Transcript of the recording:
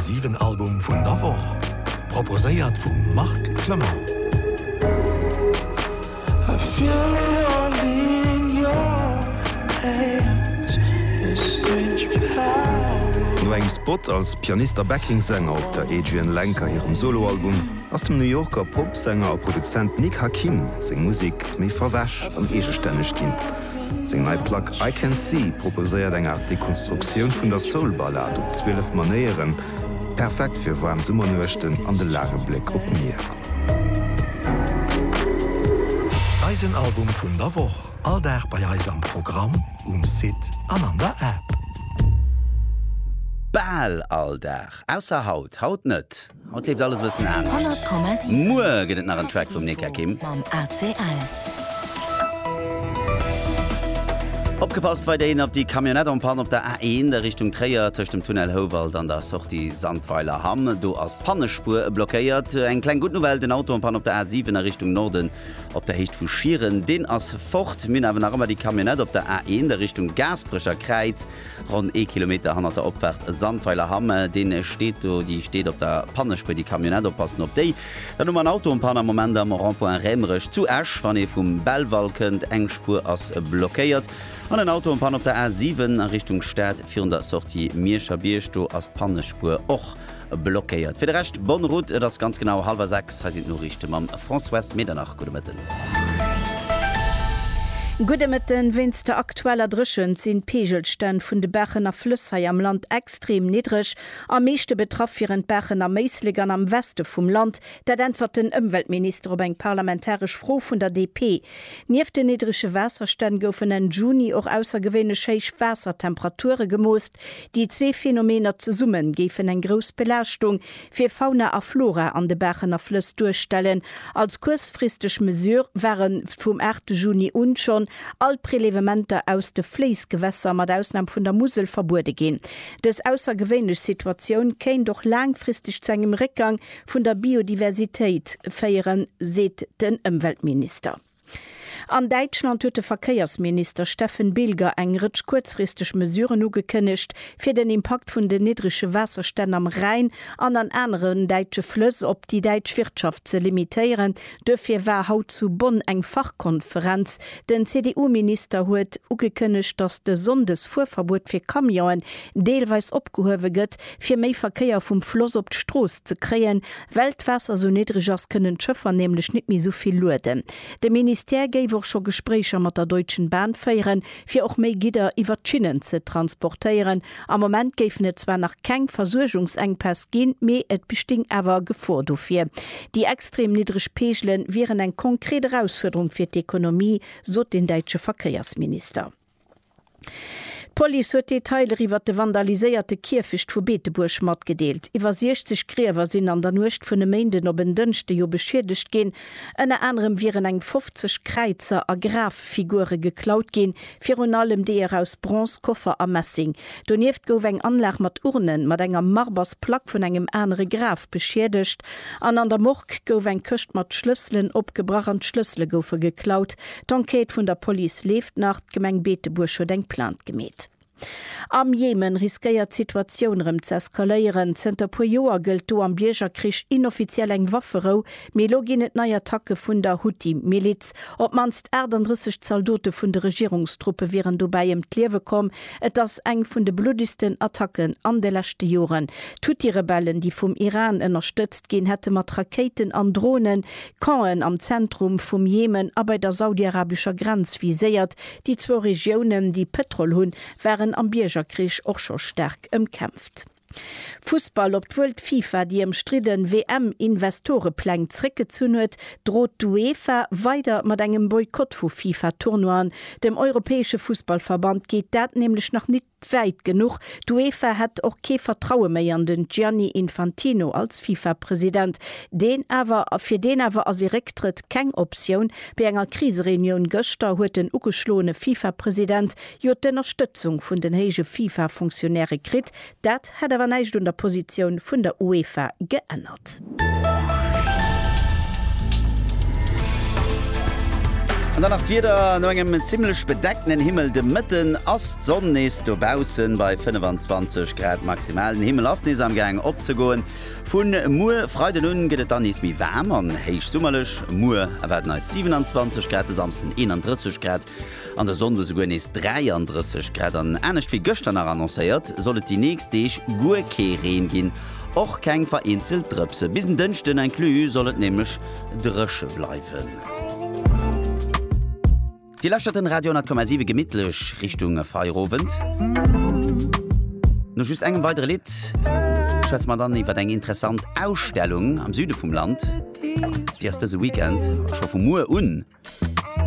7 Album vun der Woch, proposéiert vum Marc Clement. No engem Spot als Pianist a Backing-Sänger op der Adrianne Lenker hirem Solo-Album ass dem New Yorker Pop-Sänger a Produzent Nick Hakim seng Musek méi verwäsch an eegestänneg ginn. Seng nei Plack I Can See proposéiert eng Aart Dekonstruktioun vun der Soul-Ballad op 12 Manéieren, perfekt fir waarm Summernuechten an de laange Bléck op d'Mier. Eisen Album vun der Woch, all Dag bei eis am Programm, um Site an an der App. Bal all Dag, ausser haut, haut net. Haut leeft alles e bëssen anescht. Muer gëtt et nach en Track vum Neka Kim. Opgepasst weiderhin op déi Camionnette en panne op der A1 a Richtung Tréier tëscht dem Tunnel Houwald an der Sortie Sandweiler Hamm. Do ass d'Pannespuer blockéiert. Eng kleng gutt Nouvelle, den Auto en panne op der A7 a Richtung Norden op der Héicht vu Schieren, deen ass fort. Mir hunn awer nach ëmmer déi Camionnette op der A1 a Richtung Gaasperecher Kräiz. Ronn ee Kilometer hannert der Opfaart Sandweiler Hamm, deen steet do, déi steet op der Pannespur, déi Camionnette, oppassen op déi. Dann hu mer en Auto en panne am Moment am Rond-point Rämerech zu Esch, wann ee vum Belval kënnt, eng Spur ass blockéiert, an en Auto en panne op der A7 a Richtung Stad virun der Sortie Mierscher Bierg, do ass d'Pannespur och blockéiert. Fir de Rescht bonne route, et ass ganz genau hallwer 6, hei sinn d'Noriichte mam Françoise Medernach. Gudde Mëtten. Gudde Mëtten. Wéinst der aktueller Dréchent sinn d'Peegelstänn vun de Baachen a Flëss hei am Land extrem niddreg. Am meeschte betraff wieren d'Baachen am Éislek an am Weste vum Land. Dat äntwert den Ëmweltminister op eng parlamentaresch Fro vun der DP. Nieft den niddrege Waasserstänn goufen Enn Juni och aussergewéinlech héich Waassertemperature gemoost. Déi zwee Phänomener zesumme géifen eng grouss Belaaschtung fir Fauna a Flora an de Baachen a Flëss duerstellen. Als kuerzfristeg Mesure ware vum 8 Juni un schonn all Prelevementer aus de Fléissgewässer, mat Ausnam vun der Musel, verbuede ginn. Dës aussergewéinlech Situatioun kéint och laangfristeg zu engem Réckgang vun der Biodiversitéit féieren, seet den Ëmweltminister. An Däitschland huet de Verkéiersminister Steffen Bilger eng Rëtsch kuerzfristeg Mesuren ugekënnegt, fir den Impakt vun den niddrege Waasserstänn am Rhäin an an aneren däitsche Flëss op déi däitsch Wirtschaft ze limitéieren. Duerfir war haut zu Bonn eng Fachkonferenz. Den CDU-Minister huet ugekënnegt, datt de Sonndesfuerverbuet fir Camionen deelweis opgehuewe gëtt, fir méi Verkéier vum Floss op d'Strooss ze kréien. Well d'Waasser sou niddreg ass, kënnen d'Schëffer nämlech nit méi sou vill lueden. De Ministère géif och scho Gespréicher mat der Deutschen Bahn féieren, fir och méi Gidder iwwer d'Schinnen ze transportéieren. Am Moment géifen et zwar nach keng Versuergungsenkpäss ginn, mee et besting awer e Gefor dofir. Déi extrem niddreg Peegele wieren eng konkret Erausfuerderung fir d'Ekonomie, sot den däitsche Verkéiersminister. D'Police huet Detailer iwwer de vandaliséierte Kierfecht vu Beetebuerg matgedeelt. Iwwer 60 Griewer sinn an der Nuecht vun e Méinden op en Dënschde jo beschiedegt ginn. Ënner anerem wieren eng 50 Kräizer a Graffigure geklaut ginn, virun allem deeër aus Bronz, Koffer a Messing. Donieft gouf eng Anlag mat Urnen mat enger Marbersplack vun engem anere Graf beschiedegt. An an der Morgue gouf eng Këscht mat Schlësselen opgebrach an d'Schlëssele goufe geklaut. D'Enquête vun der Police leeft nach, d'Gemeng Beetebuerg huet eng Plainte gemeet. Am Jemen riskéiert d'Situatioun erëm ze eskaléieren. Zënter puer Joer gëllt do am Biergerkrich inoffiziell eng Wafferou, mee elo ginn et nei Attacke vun der Huthi-Miliz. Op d'mannst 38 Zaldote vun de Regierungstruppe wieren dobäi ëm d'Liewe komm. Et ass eng vun de bluddegsten Attacken an de leschte Joren. D'Huthi-Rebellen, déi vum Iran ënnerstëtzt ginn, hätte mat Rakéiten an Dronen Campen am Zentrum vum Jemen a bei der saudiarabescher Grenz viséiert. Déi zwou Regiounen, déi Pëtrol hunn, waren am Biergerkrich och scho staark ëmkämpft. Fussball, Obwuel d'FIFA déi ëmstridden WM-Investorepläng zréckgezunn huet, drot d'UEFA weider mat engem Boykott vu FIFA-Tournoien. Dem europäesche Fussballverband geet dat nämlech nach nit Wäit genuch, D'UEFA hätt och kee Vertraue méi an den Gianni Infantino als Fifa-President, deen awer, fir deen awer ass ee Récktrëtt keng Optioun. Bei enger Krisereunioun gëschter huet den ugeschloene Fifa-President jo d'Ënnerstëtzung vun den héije Fifa-Funktionäre kritt. Dat hätt awer näischt un der Positioun vun der UEFA geännert. Sport. An dann nach d'Wieder, No engem zimmlech bedeckten Himmel de Mëtten ass d'Sonn nees dobaussen bei 25 Grad maximal. Den Himmel ass nees amgaangen opzegoen. Vu muer Freiden un gëtt et dann nees méi waarm an héichsummerlech. Muer erwaarden eis 27 Grad, de Samsden 31 Grad. An der Sonn esouguer nees 33 Grad an anescht wéi gëschter nach annoncéiert, soll et déi nächst Deeg guer kee Reen ginn, och keng vereenzelt Drëpse. Bis en Dënschden inclus soll et nämlech dréche bleiwen. Dir lauschtert den Radio 10,7 gemittlech Richtung Feierowend. No just engem weidere Lidd schwätze mer dann iwwer eng interessant Ausstellung am Süde vum Land. Déi ass dëse Weekend, scho vu muer un,